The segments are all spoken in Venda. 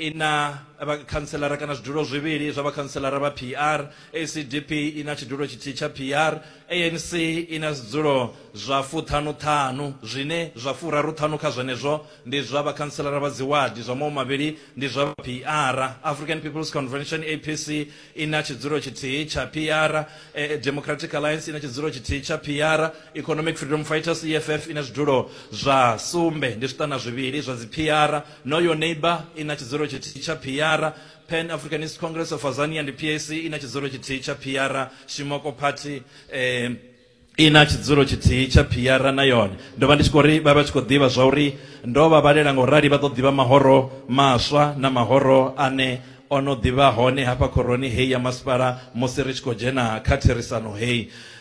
i na vhakhantselara kana zwidulo zwivhili zwa vhakhantselara vha PR, ACDP i na tshidulo tshithihi tsha PR, ANC i na zwidzulo zwa fuṱhanu-ṱhanu, zwine zwa furaru-ṱhanu kha zwenezwo ndi zwa vhakhantselara vha dziwadi, zwa maṅwe mavhili ndi zwa vha PR. African People's Convention, APC, i na tshidzulo tshithihi tsha PR, Democratic Alliance i na tshidzulo tshithihi tsha PR, Economic Freedom Fighters, EFF, i na zwidulo zwa sumbe, ndi zwiṱana zwivhili zwa dzi-PR, Know Your Neighbour i na tshidzulo tshithihi tsha phiara, Pan Africanist Congress of Azania ndi PAC i na tshidzulo tshithihi tsha phiara, Shimoko Party i na tshidzulo tshithihi tsha phiara na yone. Ndo vha ndi tshi khou ri vha vha tshi khou ḓivha zwa uri ndo vha vhalela nga u rali vha ḓo ḓivha mahoro maswa na mahoro ane o no ḓi vha hone hafha khoroni heyi ya masipala musi ri tshi khou dzhena kha therisano heyi.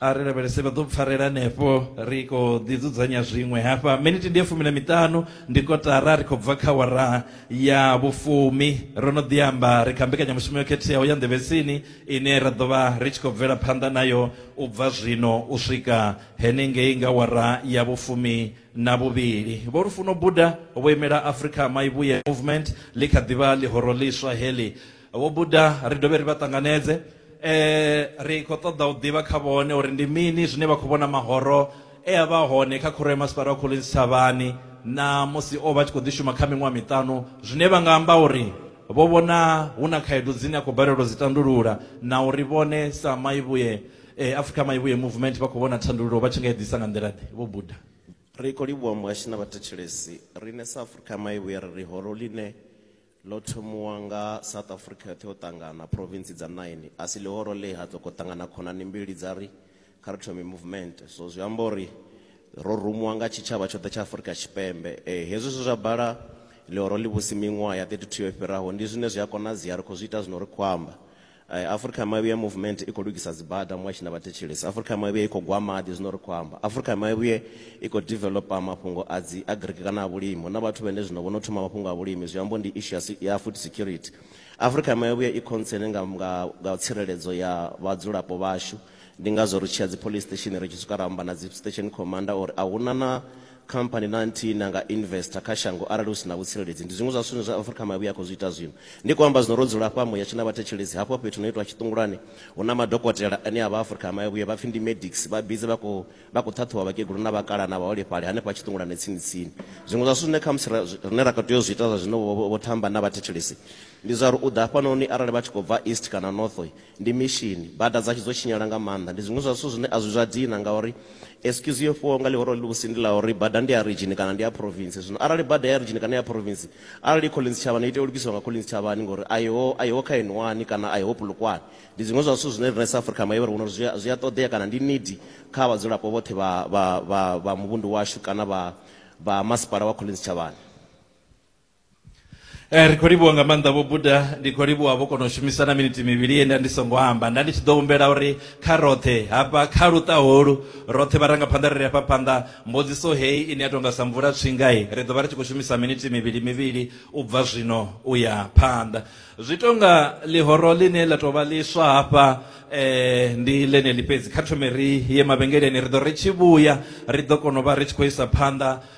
a ri lavhelese vha ḓo pfarela henefho ri khou ḓi dzudzanya zwiṅwe hafha miniti ndi ya fumi na miṱanu ndi kotara ri khou bva kha wara ya vhufumi ro no ḓi amba ri kha mbekanyamushumo yo khetheaho ya nḓevhetsini ine ra ḓo vha ri tshi khou bvela phanḓa nayo u bva zwino u swika henengei nga wara ya vhufumi na vhuvhili vho lufuno buda vho imela africa maivhuye movement ḽi kha ḓivha ḽihoro ḽiswa heḽi vho buda ri dovhe ri vha ṱanganedze eh ri khou ṱoḓa u ḓivha kha vhone uri ndi mini zwine vha khou vhona mahoro e a vha hone kha khoro ya masipala wa Collins Thavhani na musi o vha a tshi khou ḓi shuma kha miṅwaha miṱanu zwine vha nga amba uri vho vhona hu na khaedu dzine a khou balelwa u dzi tandulula na uri vhone sa Maivhuye eh, Africa Maivhuye Movement vha khou vhona thandululo vha tshi nga i ḓisa nga nḓila ḓe vho buda Ri khou livhuwa muhashi na vhathetshelesi. Riṋe sa Afrika Maivhuye ri ri horo ḽine Ḽo thomiwa nga South Africa yoṱhe yo ṱangana, province dza nine. A si ḽihoro ḽe ha sokou ṱangana khonani mbili dza ri kha ri thome movement. So zwi amba uri ro rumiwa nga tshitshavha tshoṱhe tsha Afrika Tshipembe. Ee, hezwi zwe zwa bala ḽihoro ḽivhusi miṅwaha ya 32 yo fhiraho ndi zwine zwi a konadzea, ri khou zwi ita zwino ri khou amba. Afrika ya Mavhuya Movement i khou lugisa dzibada muṅwe a tshi na vhathetshelesi. Afrika ya Mavhuya i khou gwa maḓi zwino ri khou amba. Afrika ya Mavhuya i khou developer mafhungo a dzi agric kana a vhulimi. Hu na vhathu vhane zwino vho no thoma mafhungo a vhulimi zwi ambo ndi issue ya ya food security. Afrika ya Mavhuya i concern nga nga nga tsireledzo ya vhadzulapo vhashu. Ndi ngazwo ri tshi ya dziPolice Station ri tshi swika ra amba na dzi Station Commander uri a hu na na Company na nthihi ine ya nga investor kha shango arali hu si na vhutsireledzi. Ndi zwiṅwe zwa zwithu zwine zwa Afrika Mavhi ya khou zwi ita zwino. Ndi khou amba zwino ro dzula hafha Muyatshe na vhathetshelesi, hafho fhethu hu no itwa tshiṱungulwani hu na madokotela ane a vha a Afrika Mavhi vha pfi ndi Medics, vha busy vha khou vha khou ṱhaṱhuvha vhakegulu na vhakalaha na vhaholefhali hanefha tshiṱungulwani tsini tsini. Zwiṅwe zwa zwithu zwine khamusi ra rine ra kha tea u zwi ita zwa zwino vho Thamba na vhathetshelesi ndi zwa uri u ḓa hafhanoni arali vha tshi khou bva East kana North, Ndi mishini. Bada dzashu dzo tshinyala nga maanḓa. Ndi zwiṅwe zwa zwithu zwine a zwi zwa dina ngauri excuse yo fhiwaho nga ḽihoro ḽivhusi ndi ḽa uri bada ndi ya ridzhini kana ndi ya province. Zwino arali bada ya ridzhini kana ya province, arali i Collins Tshavhani i tea u lugisiwa nga Collins Tshavhani ngori a iho a iho kha N one kana a iho Polokwane. Ndi zwiṅwe zwa zwithu zwine riṋe sa Afrika Maivha ri vhona uri zwi zwi a ṱoḓea kana ndi need kha vhadzulapo vhoṱhe vha vha vha vha muvhundu washu kana vha vha masipala wa Collins Tshavhani. Eh, ri khou livhuwa nga maanḓa vho buda ndi khou livhuwa vho kona u shumisa na miniti mivhili ye nda ndi songo amba nda ndi tshi ḓo humbela uri kha roṱhe hafha kha luṱa holu roṱhe vharangaphanḓa ri ri hafha phanḓa mbudziso heyi ine ya tonga sa mvula tswingai ri ḓo vha ri tshi khou shumisa miniti mivhili mivhili u bva zwino u ya phanḓa zwi tonga ḽihoro ḽine ḽa tou vha ḽiswa hafha eh, ndi ḽeneḽi fhedzi kha thome ri ye mavhengeleni ri ḓo ri tshi vhuya ri ḓo kona u vha ri tshi khou isa phanḓa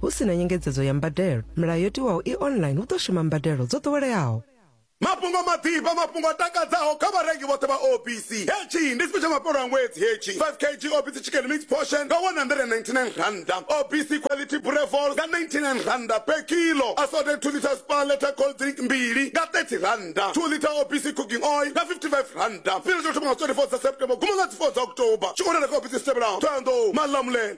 Hu si na nyengedzedzo ya mbadelo, milayo yo tiwaho i online hu ḓo shuma mbadelo dzo ḓoweleaho. Mafhungo maḓifha, mafhungo a takadzaho kha vharengi vhoṱhe vha OBC. Hetshi ndi tshifhe tsha mafhelo a ṅwedzi hetshi 5 kg OBC Chicken Mix Portion nga R199, OBC Quality Brevol nga R99 per kilo, Assorted 2 litre Spar Letter Cold Drink mbili nga R30, 2 litre OBC Cooking Oil nga R55. Tshifhinga tsha u thoma nga dzi 24 dza September u guma nga dzi 4 dza October. Tshiorele kha ofisi dzi tevhelaho, Thohoyandou, Malamulele.